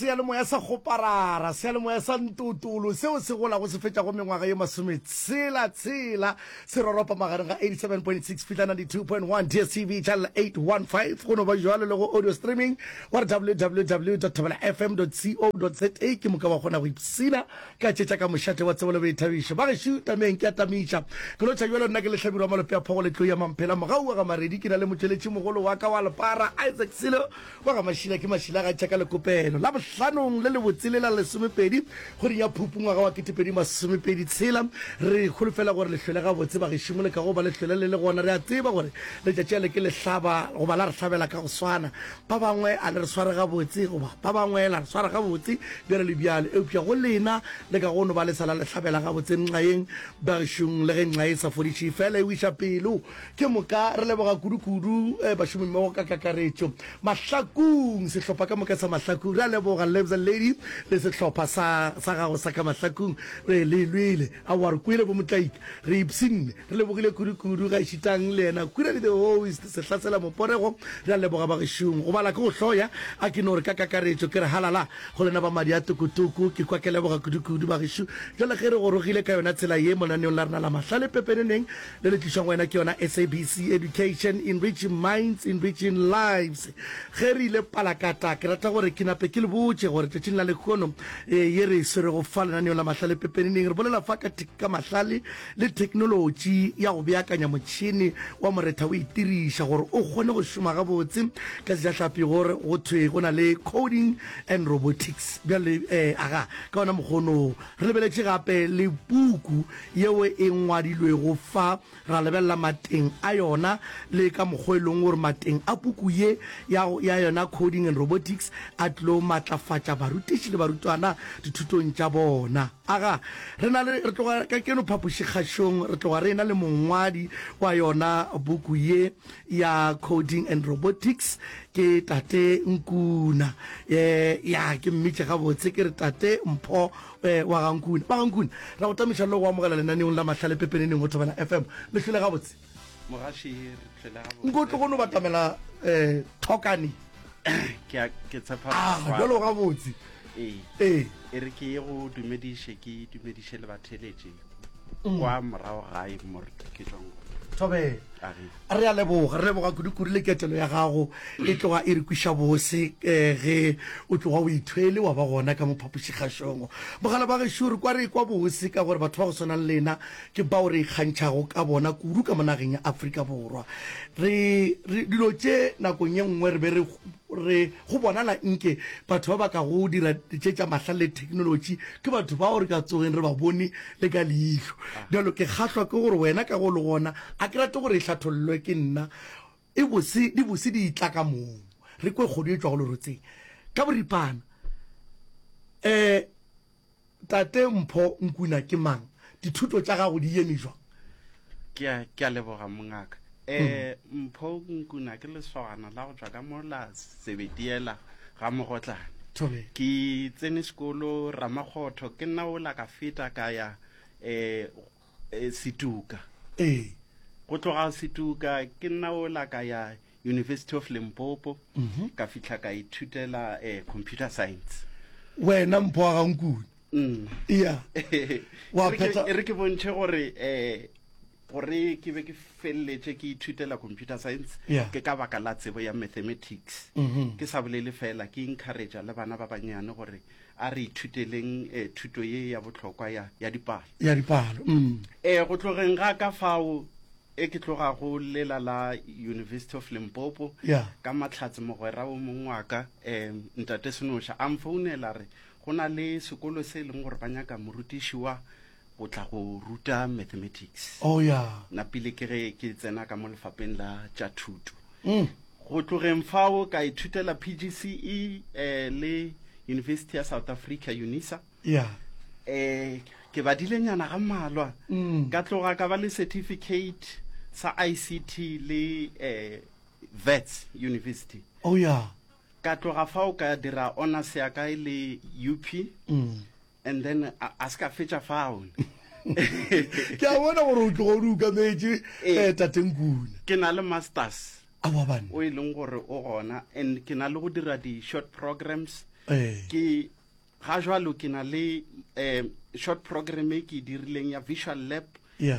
Seyalemoya sa Goparara, seyalemoya sa Ntotolo seo se golago se fetšago mengwaga ye masometshela tshela se roropa magareng ga 87.6 fihla 92.1 DSTV channel 815 go no ba jwalo le go audio streaming wa re www.thabelafm.co.za ke moka wa kgona go ipsina ka tše tša ka mošate wa tsebo le boithabišo ba gešo tameng ke a tamiša ke no tšha jwalo nna ke lehlabirwa malope a phogo le tlou ya mamphela mogaua ga maredi ke na le motšweletši mogolo wa ka wa lepara Isaac Silo Wa ga Mašila ke Mašila ga tšha ka lekopelo la bohlanong le lebotse le la lesomepedi kgweding ya Phupu ngwaga wa ketepedi masomepedi tshela. Re holofela gore le hlwele gabotse bagešimo le ka go ba le hlwele le le gona. Re a tseba gore letšatši a le ke le hlaba goba la re hlabela ka go swana. Ba bangwe a le re sware gabotse goba ba bangwe la re swara gabotse bjalo le bjalo eupša go lena le ka go no ba le sa la le hlabela gabotse nxa yeng bagešong le ge nxa e sa fodiše fela e wiša pelo. Ke moka re leboga kudukudu bašomimmogo ka kakaretšo. Mahlakung, sehlopha ka moka sa Mahlakung, re a leboga Lebza Lady le sehlopha sa sa gago sa ka Mahlakung. Re le lwele. Aowa, re kwele bomotlaika. Re ipshinne. Re lebogile kudukudu gaešitang le yena Kwirali the host, Sehlasela Moporego. Re a leboga bagešong. Go bala ke go hloya. A ke no re ka kakaretšo ke re halala go lena ba madi a tokotoko. Ke kwa ke leboga kudukudu bagešo. Bjale ge re gorogile ka yona tsela ye monaneong la rena la mahlale pepeneneng, le le tlišwa go wena ke yona SABC Education, Enriching Minds, Enriching Lives. Ge re ile Palakata, ke rata gore ke nape ke le botše gore tšatšing la lekgono ee ye re e swerego fa lenaneong la Mahlale Pepeneneng re bolela fa ka ka mahlale le theknolotši ya go beakanya motšhene wa moretha o itiriša gore o kgone go šoma gabotse ka sejahlapi gore go thwe go na le coding and robotics bjale ee aga ka ona mokgono Re lebeletše gape le puku yeo e ngwadilwego fa, ra lebelela mateng a yona le ka mokgwa e lego gore mateng a puku ye ya, ya yona Coding and Robotics a tlilo matlafatša barutiši le barutwana dithutong tša bona. Aga, re na le, re tloga kajeno phapošikgašong re tloga re ena le mongwadi wa yona puku ye. ya Coding and Robotics ke Tate Nkuna. Ya, ke mmitše gabotse ke re Tate Mpho wa ga Nkuna. Ba ga Nkuna, ra go tamiša le go amogela lenaneong la Mahlale Pepeneneng go Thobela FM. Le hlwele gabotse. Mogaši, re hlwele gabotse. Nko tlogo no batamela Thokani. Ke a, ke tshepa. Ah, jalo gabotse. ee ee e re ke ye go dumediše ke dumediše le batheletše mm. kwa morago gae more ke tswang tobela re a leboga re leboga kudukuru le ketelo ya gago e tloga e re kwiša bose um ge o tloga o ithwele wa ba gona ka mophapošikgašongo mogala ba gešo re kwa re kwa bose ka gore batho ba go swanang lena ke bao re ikgantšhago ka bona kudu ka monageng ya aforika borwa re dilo tše nakong ye nngwe re be re re go bonala nke batho ba ba ka go dira tše tša mahlale le theknolotši ke batho bao re ka tsogeng re ba bone le ka leihlo bjalo ke kgahlwa ke gore wena ka go le gona a ke rate gore e hlathollwe ke nna e bose di bose di tla ka mong re kwe kgodu e tšwa go lerotseng ka boripana um Tate Mpho Nkuna ke mang? Dithuto tša gago di yeme jwang? Ke a, ke a leboga, mongaka. Eh, Mpho Nkuna ke lesogana la go tšwa ka mo la Sebetiela ga Mogotlane. Thobela. Ke tsene sekolo Ramakgotho, ke nna o la ka feta ka ya eh E, Setuka. Ee. Go tloga Setuka ke nna o la ka ya University of Limpopo mhm. ka fihla ka ithutela eh, computer science. Wena mpho wa gankune. Mm. Iya. Wa phetsa. E re ke bontšhe gore eh gore ke be ke feleletse ke ithutela computer science yeah. ke ka baka la tsebo ya mathematics mm -hmm. ke sa bolele fela ke encouragea le bana ba bannyane gore A re ithuteleng thuto ye ya bohlokwa ya, ya dipalo. Ya dipalo. Mm. E, go tlogeng ga ka fao e ke tloga go lela la University of Limpopo Ya. ka mahlatse mogwera wo mongwe wa ka um ntate Senoša a mfounela re go na le sekolo se e leng gore ba nyaka morutiši wa o tla go ruta mathematics oh, yeah. na pele ke ge ke tsena ka mo lefapeng la tša thuto mm. go tlogeng fao ka ithutela pgce eh, le university ya south africa unisa yeah. eh, ke badile nyana ga mmalwa mm. ka tloga ka ba le certificate sa ict le eh, vets university oh, yeah. ka tloga fao ka dira honors ya kae le up mm. and then a, a se ka fetša fao ke a bona gore o tlogo o di ukametse eh. eh, tatenkune ke na le masters awaban o e leng gore o gona and ke na le go dira di-short programs eh. ke ga jalo ke na le um short program e ke e dirileng ya visual lab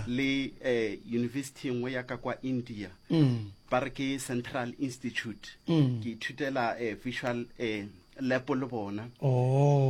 le eh, university nngwe ya ka kwa india mm. ba re ke central institute mm. ke ithutela eh, visual eh, lepo le bona oh.